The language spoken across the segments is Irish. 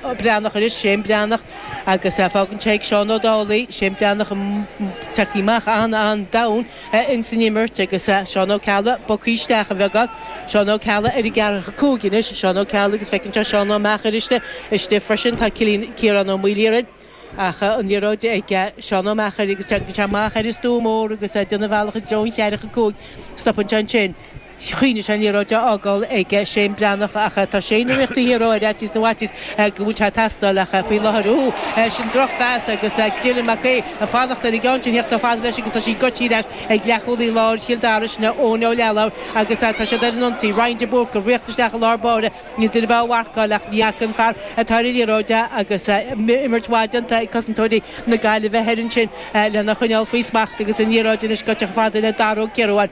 Breathnach anois, Shane Breathnach agus fágann sé ag Seán Ó Dálaigh, Shane Breathnach tagtha amach an-an-domhain ins an imirt agus Seán Ó Ceallaigh bogtha isteach beagán, Seán Ó Ceallaigh ar an gceathracha cúig anois, Seán Ó Ceallaigh agus feiceann sé Seán Ó Meachair istigh, istigh freisin, tá Cillian, Ciarán Ó Maoilchiaráin. Ach an liathróid ag Seán Ó Meachair agus téann sé amach ar an stua mór agus é ag déanamh a bhealach i dtreo an cheathracha cúig. Stopann sé ansin. Choinnigh sé an liathróid á fhágáil ag Shane Breathnach ach tá Shane ag ritheacht siar ar fhaitíos na bhfaitíos go mbeidh sé ag teastáil ach faoi láthair, úúú, sin drochphas agus Dylan Mac Aoidh ag fanacht ar an gceann sin theacht chomh fada leis agus tá sí goití leis ag leathchúlaí láir Chill Dara, sin é Eoin Ó Leathlobhair agus tá siad ar an ionsaí. Ryan de Búrca ag ritheacht isteach i lár báire. Níl duine beo á mharcáil ach ní fhaca an fear atá ar an liathróid é agus imirt mhaith déanta ag cosantóirí na Gaillimhe thiar ansin lena choinneáil faoi smacht agus an liathróid anois goite chomh fada le Dara Ó Ciaruáin.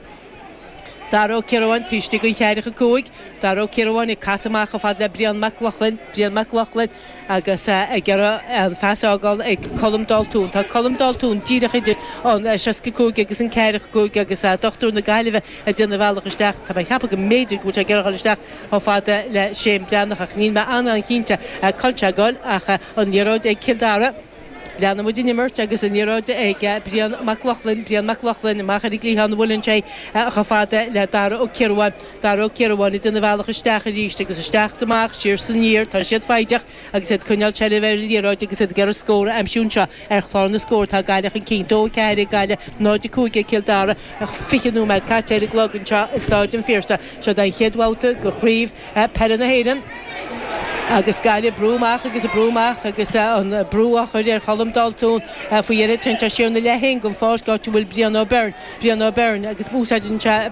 Dara Ó Ciaruáin taobh istigh den cheathracha cúig. Dara Ó Ciaruáin ag casadh amach chomh fada le Brian Mac Lochlainn. Brian Mac Lochlainn. Agus ag iarraidh an phas a fhágáil ag Colm Daltún. Tá Colm Daltún díreach idir an seasca a cúig agus an ceathracha a cúig agus dochtúir na Gaillimhe ag déanamh a bhealach isteach. Tá mé ag ceapadh go mb'fhéidir go bhfuil sé ag iarraidh a dhul isteach chomh fada le Shane Breathnach ach níl mé an-an-chinnte cá bhfuil sé ag gabháil ach an liathróid ag Cill Dara. Leanann muid an imirt agus an liathróid ag Brian Mac Lochlainn, Brian Mac Lochlainn amach ar an gcliathán, buaileann sé chomh fada le Dara Ó Ciaruáin, Dara Ó Ciaruáin ag déanamh a bhealach isteach arís agus isteach is amach, siar is aniar, tá siad foighdeach agus iad ag coinneáil seilbhe ar an liathróid agus iad ag iarraidh scór a aimsiú anseo ar chlár na scór. Tá Gaillimh chun cinn, 2, 4 ag Gaillimh, 0, 5 ag Cill Dara. Fiche nóiméad caite ar an gclog anseo i Stáid an Phiarsaigh. Seo é an chéad bhabhta de Chraobh. Peile na hÉireann agus Gaillimh ag brú amach agus ag brú amach agus an brú á chur ar Cholm Daltún faoi dheireadh sin tá sé ina leath féin den pháirc áit a bhfuil Brian O'Beirne Brian O'Beirne agus úsáideann sé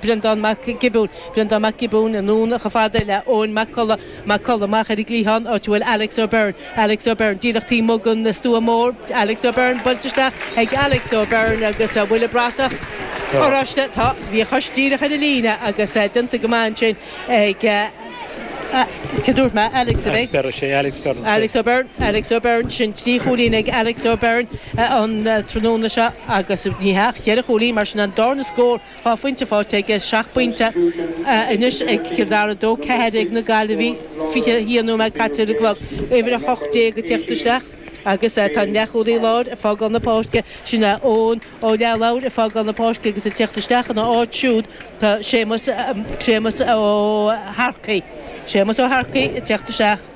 Brendán Mac Giobúin Brendán Mac Giobúin anonn chomh fada le Eoin Mac Colla Mac Colla amach ar an gcliathán áit a bhfuil Alex O'Beirne Alex O'Beirn, díreach taobh amuigh den stua mór. Alex O'Beirn, buailte isteach ag Alex O'Beirn agus an bhfuil an bhratach oráiste? Tá. Bhí a chois díreach ar an líne agus déanta go maith ansin ag, cé a dúirt mé? Alex, ab é? Alex Beirn, sé Alex Beirn. Alex O'Beirn, Alex O'Beirn, sin trí chúilín ag Alex O'Beirn an tráthnóna seo agus, ní hea, ach cheithre chúilín, mar sin an darna scór. Dhá phointe faighte aige, seacht bpointe anois ag Cill Dara, 2, 4 ag na Gaillimhigh, 21 nóiméad caite ar an gclog, uimhir 18 ag teacht isteach agus tá an leathchúlaí láir ag fágáil na páirce, sin é Eoghan Ó Leathlobhair ag fágáil na páirce agus ag teacht isteach ina áit siúd tá Séamus Ó hEarchaí, Séamus Ó hEarchaí ag teacht isteach.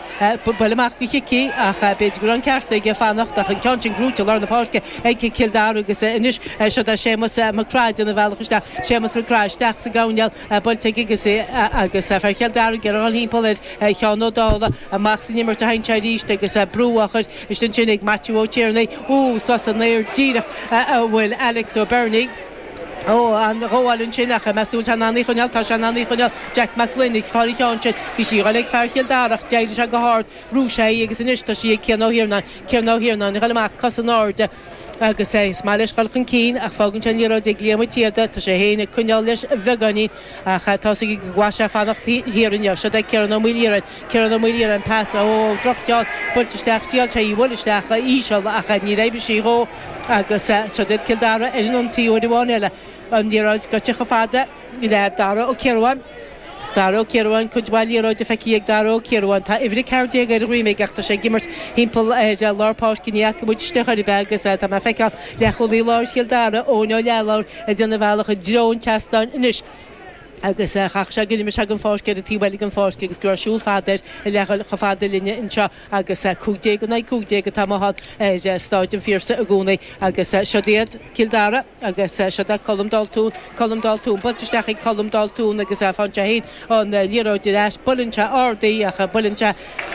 buail amach go Chicky ach b'fhéidir go raibh an ceart aige fanacht ach an ceann sin gnóite i lár na páirce ag Cill Dara agus anois siod é Séamus Mac Craith ag déanamh a bhealach isteach Séamus Mac Craith isteach sa gcoirnéal buailte aige agus é agus fear Chill Dara ag dul thimpeall ar Sheán Ó Dálaigh amach san imirt a théann sé arís agus brú á chur isteach ansin ag Maitiú Ó Tiarnaigh úúú suas san aer díreach a bhfuil Alex Ó Beirn Ó, an-ghabháil ansin ach, meas tú an bhfuil sé in ann í a choinneáil, tá sé in ann í a choinneáil, Jack Mac Gloinn, ag fáil an cheann sin, bhí sé doiligh ag fear Chill Dara ach d'éirigh sé go hard, bhrúigh sé í agus anois tá sí ag Cian Ó hIarnáin, Cian Ó hIarnáin ag dul amach cosa in airde agus is maith leis dhul chun cinn ach fágann sé an liathróid ag Liam Ó Síoda, tá sé féin ag coinneáil leis bheagáinín ach tá's aige go gcaithfidh sé fanacht thiar inniu, siod é Ciarán Ó Maoilchiaráin. Ciarán Ó Maoilchiaráin trasna ó droch-cheann buailte isteach shíl sé í a bhualadh isteach íseal ach níor fheidhmigh sí dhó agus seo duit Cill Dara ar an ionsaí uair amháin eile. An liathróid goite chomh fada le Dara Ó Ciaruáin. Dara Ó Ciaruáin cuid mhaith liathróide feicthe ag Dara Ó Ciaruáin. Tá uimhir 14 ar a dhroim ach tá sé ag imirt thimpeall ar lár páirce ní fhaca muid isteach ar bith é agus tá mé ag feiceáil leathchúlaí láir Chill Dara, Eoin Ó Leathlobhair ag déanamh a bhealach i dtreo an tseastáin anois. agus chaithfeadh sé go n-imeodh sé den pháirc ar an taobh eile den pháirc agus go raibh siúl fada air le fáil chomh fada linne anseo agus cúig déag in aghaidh cúig déag atá amuigh ann ar Stáid an Phiarsaigh i gcónaí agus siod iad Cill Dara agus siod é Colm Daltún, Colm Daltún, buailte isteach ag Colm Daltún agus fágann sé fhéin an liathróid ar ais, buaileann sé ard í ach buaileann sé,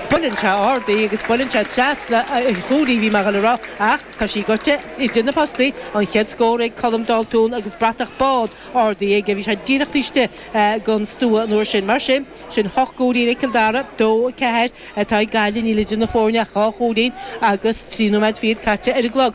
buaileann sé ard í agus buaileann sé trasna an chúil í bhí mé a dhul a rá ach tá sí goite idir na postaí, an chéad scór ag Colm Daltún agus bratach bán. ardaithe aige. Bhí sé díreach taobh istigh den stua an uair sin. Mar sin, sin hocht gcúilín ag Cill Dara, dó, a ceathair atá ag Gaillimh. Níl idir na foirne ach dhá chúilín agus trí nóiméad fichead caite ar an gclog.